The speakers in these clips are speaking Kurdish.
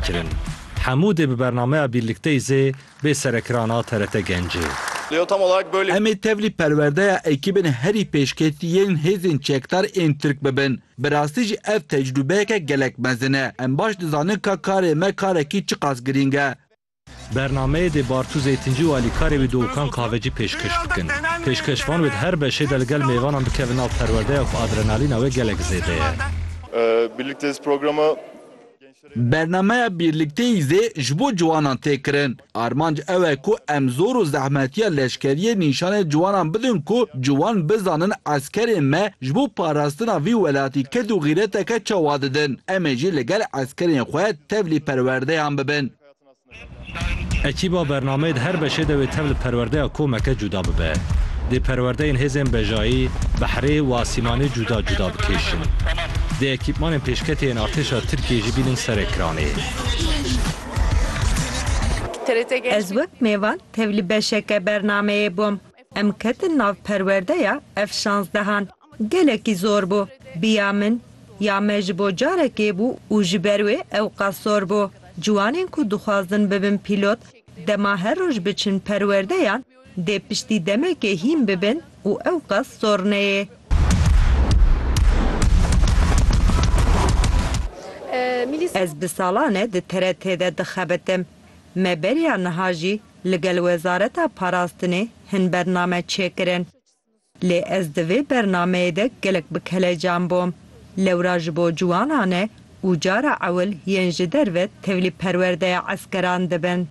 Kirin. Hemû dê bi bernameya Birlikteyî zê bê serekiran a TRT Gencê. Emê tevlî perwerdeya ekîbên herî pêşketî yên hêzên çekdar ên Tirk bibin. Bi rastî jî ev tecrûbeyeke gelek mezin e. Em baş dizanin ka karê me karekî çiqas girîng e. Bernameyê dê Bartu Zeytincî û alîkarê wî Dowkan Kahvecî pêşkêş bikin. Pêşkêşvan wê di her beşê de li gel mêvanan bikevin nav perwerdeya ku adrenalîna wê gelek zêde ye. Bernameya Bîrlikteyî zê ji bo ciwanan tê kirin. Armanc ew e ku em zor û zehmetiya leşkeriyê nîşanê ciwanan bidin ku ciwan bizanin eskerên me ji bo parastina vî welatî ked û xîreteke çawa didin. Em ê jî li gel eskerên xwe tevlî perwerdeyan bibin. Ekîba bernameyê di her beşê de wê tev li perwerdeya komeke cuda bibe. Dê perwerdeyên hêzên bejayî, behrê û asîmanê cuda cuda bikêşin. Dê ekîpmanên pêşketê yên artêşa Tirkiyê jî bînin serê kiranê. Ez wek mêvan tev li beşeke bernameyê bûm. Em ketin nav perwerdeya F şanzdehan. Gelekî zor bû. Bi ya min, ya me ji bo carekê bû û ji ber wê ewqas zor bû. Ciwanên ku dixwazin bibin pîlot, dema her roj biçin perwerdeyan, dê piştî demekê hîn bibin û ewqas zor neyê. Ez bi salan e di TRT de dixebitim. Me beriya niha jî ligel Wezareta Parastinê hin bername çêkirin. Lê ez di vê bernameyê de gelek bi kelecan bûm. Lewra ji bo ciwanan e û cara ewil yên ji derve tevlî perwerdeya eskeran dibin.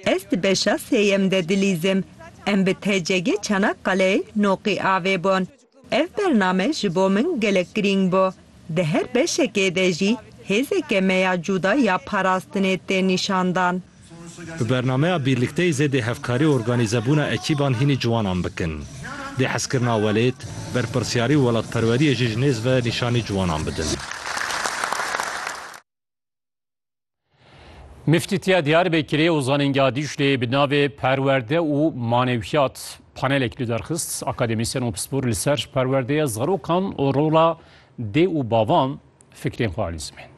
Ez di beşa sêyem de dilîzim. Em bi TCG Çanakkaleê Noqî avê bûn. Ev bername ji bo min gelek girîng bû. Di her beşekê de jî hêzeke me ya cûda ya parastinê tê nîşandan. Bi bernameya Bîrlikteyî zêdê hevkarî û organîzebûna ekîban hînî ciwanan bikin. Dê hezkirina welêt, berpirsyarî û welatperweriyê jî ji nêz ve nîşanî ciwanan bidin. Miftîtiya Diyarbekirê û Zanîngeha Dîcleyê bi navê Perwerde û Manewiyat panelek li derxist akademîsyen û pispor li ser perwerdeya zarokan û rola dê û bavan fikrên xwe alî zimên.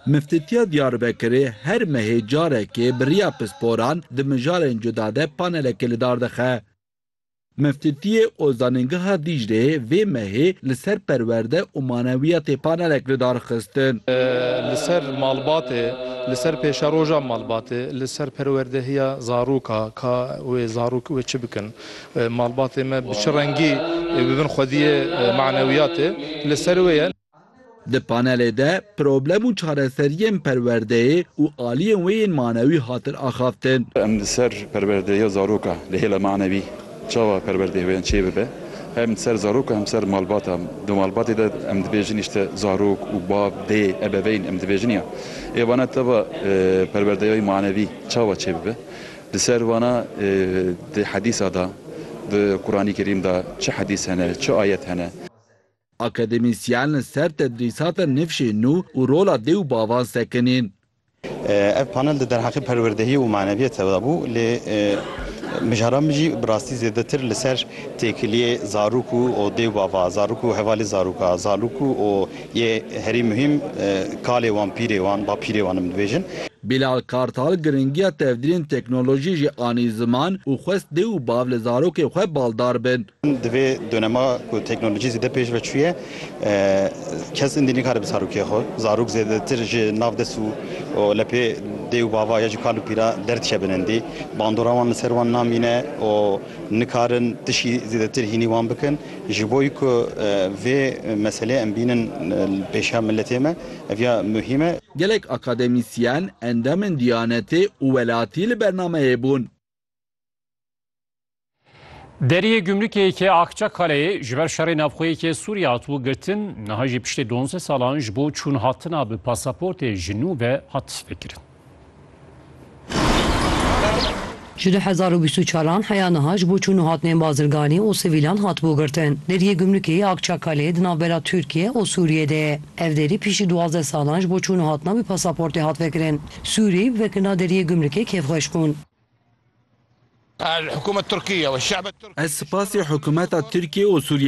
Miftîtiya Diyarbekirê her mehê carekê bi riya pisporan di mijarên cuda de panelekê li dar dixe. Meftiftiyê û Zanîngeha Dîcleyê vê mehê li ser perwerde û manewiyatê panelek li dar xistin. Li ser malbatê, li ser pêşeroja malbatê, li ser perwerdehiya zaroka, ka wê zarok wê çi bikin, malbatê me bi çi rengî bi bin xwediyê manewiyatê li ser wê ye. Di panelê de problem û çareseriyên perwerdeyê û aliyên wê yên manewî hatin axaftin. Em li ser perwerdeya zaroka li hêla manewî çawa perwerdeyê wê çê bibe hem li ser zarok û hem li ser malbata di malbatê de em dibêjin îşte zarok û bav, dê, ebeveyn em dibêjin ya ê vana teva perwerdeyayî manewî çawa çê bibe li ser vana di hedîsa de di Quranî Kerîm de çi hedîs hene çi ayet hene. Akademîsyen li ser tedrîsata nifşên nû û rola dê û bavan sekinîn. Ev panel di derheqê perwerdehiyê û maneviyetê de bû lê mijaran min jî bi rastî zêdetir li ser têkiliyê zarok û dê û bava, zarok û hevalê zaroka, zalok û û yê herî muhîm kalê wan, pîrê wan, ba pîrê wan em dibêjin. Bilal Kartal giringiya tevdirên teknolojiyê jî anî ziman û xwest dê û bav li zarokên xwe baldar bin. Di vê dönemê ku teknolojî zêde pêş ve çûye kes indî nikare bi zarokê xwe zarok zêdetir ji nav dest û lepê dê û bava ya jî kal û pîra derdikevin indî. Bandora wan li ser wan namîne û nikarin tişî zêdetir hînî wan bikin. Ji bo ku vê meselê em bînin li pêşiya miletê me ev ya muhîm e. Gelek akademîsyen, endamên Diyanetê û welatî li bernameyê bûn. Deriyê gümrükê yekê Akçakaleyê ji ber şerê navxweyekê Sûriye hatibû girtin, niha jî piştê donze salan ji bo çûn hatina bi pasaportê ji nû ve hat vekirin. Ji du hezar û bîst û çar an heya niha ji bo çûn û hatinên bazirganî û sivîlan hatibû girtin. Deriyê gümrükê yê Akçakaleyê di navbera Tirkiye û Sûriyê de ye. Ev derî piştî duwazdeh salan ji bo çûn û hatina bi pasaportê hat vekirin. Sûrî, wek na deriyê gumrikê kêfxweş bûn. Ez sipasê hikûmeta Tirkiyê û Sûriyeyê